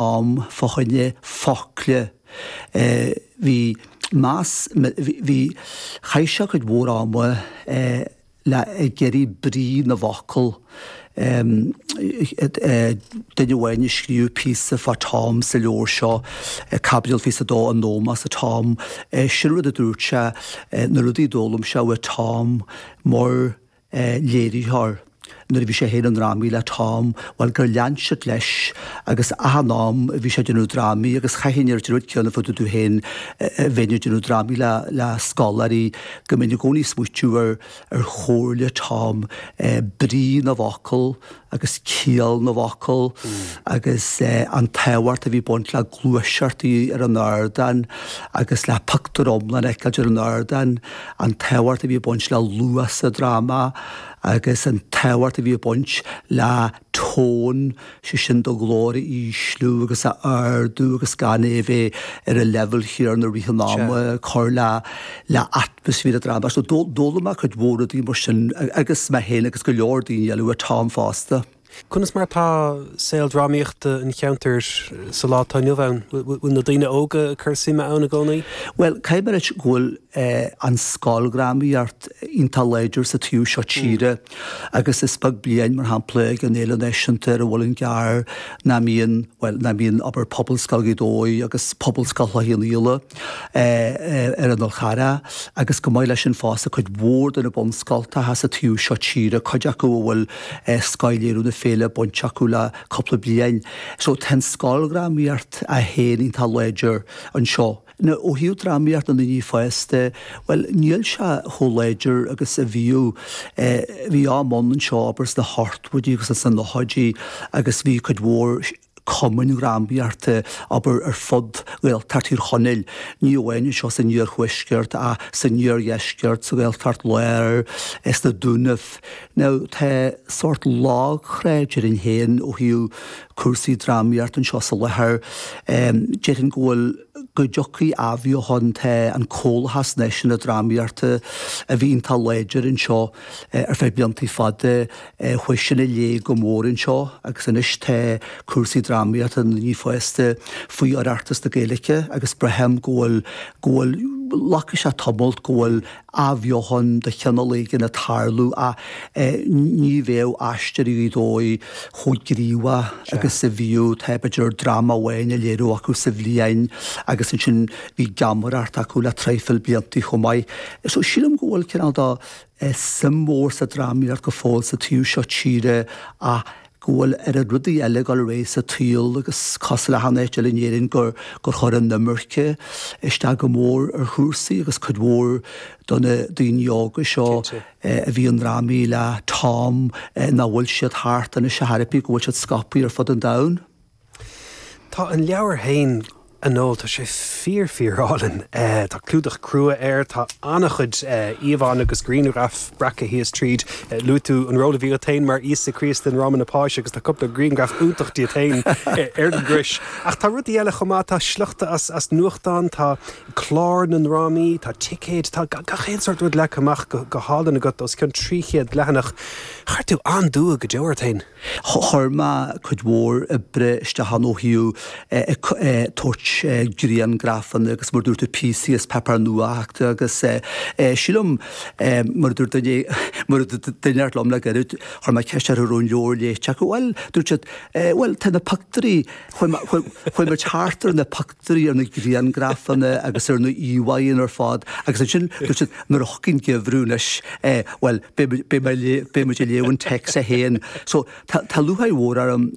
am fá choinne focla. Bhí meas, bhí, chaith sé cuid mhór ama ag iarraidh brí na bhfocal. Duine amháin a scríobh píosa fá Tom sa leabhar seo, Caibidil Fiche is a Dó, In Ómós do Tom, sin rud a dúirt sé, na rudaí a d'fhoghlaim sé ó Tom, mar léiritheoir nuair a bhí sé féin i ndrámaí le Tom, bhuel, gur lean siad leis agus achan am a bhí sé ag déanamh drámaí agus chaithfinn a ráit an rud céanna fá dtaobh díom féin nuair a bheinn ag déanamh drámaí le le scoláirí go mbeinn i gcónaí ag smaoitiú ar chomhairle Tom, brí na bhfocal, agus ciall na bhfocal agus an tábhacht a bhí ag baint le gluaiseacht ar an ardán agus le pictiúr iomlán a fheiceáil ar an ardán, an tábhacht a bhí ag baint le luas sa dráma agus an tábhacht a bhí ag baint le tone, sé sin do ghlór a ísliú agus a ardú agus gan é a bheith ar an leibhéal chéanna i rith an ama, cur le brí an dráma, so d'fhoghlaim mé cuid mhór rudaí mar sin agus mé féin agus go leor daoine eile ó Tom fosta. Conas mar atá saol drámaíochta an cheantair sa lá atá inniu ann? Bhfuil na daoine óga ag cur suime ann i gcónaí? Bhuel, caithfidh mé a ráit go bhfuil an scoildrámaíocht iontach láidir sa taobh seo tíre agus is beag bliain, mar shampla, ag an Fhéile Náisiúnta ar an Mhuileann gCearr nach mbíonn, bhuel, nach mbíonn obair Phobalscoil Ghaoth Dobhair agus Phobalscoil Chloich Chionn Fhaola. ar an Fhál Carrach, agus chomh maith leis sin fosta cuid mhór de na bunscoltacha sa taobh seo tíre, cuid acu a bhfuil Scothléiriú na Féile bainte acu le cúpla bliain. So tá an scoildrámaíocht í féin iontach láidir anseo. Now ó thaobh drámaíocht na ndaoine fásta, bhuel níl sé chomh láidir agus a bhíodh. Bhí am ann anseo abair sna hochtóidí agus sna nóchaidí agus bhí cuid mhór, cumainn drámaíochta, abair, ar fud Ghaeltacht Thír Chonaill, ní amháin anseo san iarthuaisceart ach san iardheisceart, sa Ghaeltacht Láir, sna Dúnaibh. Now, tá sórt lagthrá, déarfainn féin, ó thaobh cúrsaí drámaíochta anseo fá láthair. Déarfainn go bhfuil, go dtiocfaidh athbheochan, tá an Comhlachas Náisiúnta Drámaíochta, a bhí iontach láidir anseo ar feadh blianta fada, chuaigh sin i léig go mór anseo agus anois tá cúrsaí drámaíochta na ndaoine fásta faoi Oireachtas na Gaeilge agus braithim go bhfuil go bhfuil glacfaidh sé tamall go bhfuil athbheochan de chineál éigin ag tarlú ach ní bheadh Aisteoirí Ghaoth Dobhair chomh gníomhach agus a bhíodh tá b'fhéidir dráma amháin á léiriú acu sa bhliain agus ansin bhí geamaireacht acu le traidhfil blianta chomh maith so sílim go bhfuil cineál de é suim mhór sa drámaíocht go fóill sa taobh seo tíre ach go bhfuil oiread rudaí eile ag dul ar aghaidh sa tsaol agus cosúil le achan áit eile in Éirinn gur chuir an imirce isteach go mór ar chúrsaí agus cuid mhór de na daoine óga seo a bhí i ndrámaí le Tom nach bhfuil siad thart anseo de thairbhe go bhfuil siad scaipthe ar fud an domhain. Tá an leabhar féin a Noel, tá sé fíor fíorálainn. Tá clúdach crua air, tá an-chuid íomhánna agus grianghraif breactha thíos tríd. Luaigh tú an ról a bhí agat féin mar Íosa Críost i nDráma na Páise agus tá cúpla grianghraf iontach díot féin ar an gcrois. Ach tá rudaí eile chomh maith, tá sliochta as nuachtáin, tá cláir na ndrámaí, tá ticéid, tá gach aon sórt rud leagtha amach go hálainn agat os cionn 300 leathanach. Chuir tú an-dua go deo ort féin. Chuir mé cuid mhór oibre isteach ann ó thaobh tabhairt griangrafanna agus mar a dúirt tú píosaí as paipéar nuachta agus sílim mar a dúirt duine mar a dúirt duine inteacht liom le gairid chuir mé ceist orthu raibh an leabhar léite acu bhuel dúirt siad bhuel tá na pictiúirí chuaigh muid thart ar na deiridh ar na griangrafanna agus ar na íomhánna ar fad agus ansin dúirt siad nuair a thiocfaidh an geimhreadh anois bhuel beidh muid ag léamh an text é féin. So tá lúcháir mhór orm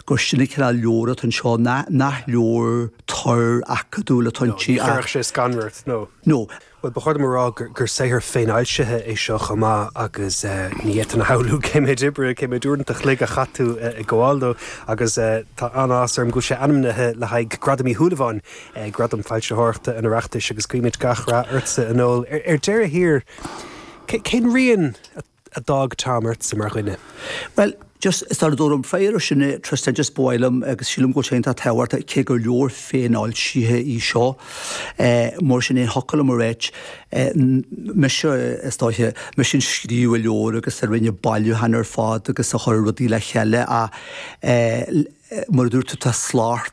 gur sin an cineál leabhar atá anseo nach leabhar tur acadúil atá inti ach. Ní chuirfeadh sé scanradh ort nó? No. Bhuel, ba chóir dom a rá gur saothar féinfhoilsithe é seo chomh maith agus ní fhéadfainn a shamhlú cé méid oibre, cé méid uaireanta an chloig a chaith tú ag gabháil dó agus tá an-áthas orm go bhfuil sé ainmnithe le haghaidh Gradam Uí Shúilleabháin, Gradam Foilsitheoireachta an Oireachtais agus guímid gach rath ortsa a Noel. Ar deireadh thiar, cén rian a. a d'fhág Tom ortsa mar dhuine. Bhuel, just, sula dtabharfaidh mé freagra air sin a Tristan, just ba mhaith liom agus sílim go bhfuil sé iontach tábhachtach cé gur leabhar féinfhoilsithe í seo, mar sin é an focal, alright, mise, is dóiche, mise a scríobh an leabhar agus a rinne bailiúchán ar fad agus a chuir rudaí le chéile ach mar a dúirt tú tá slacht,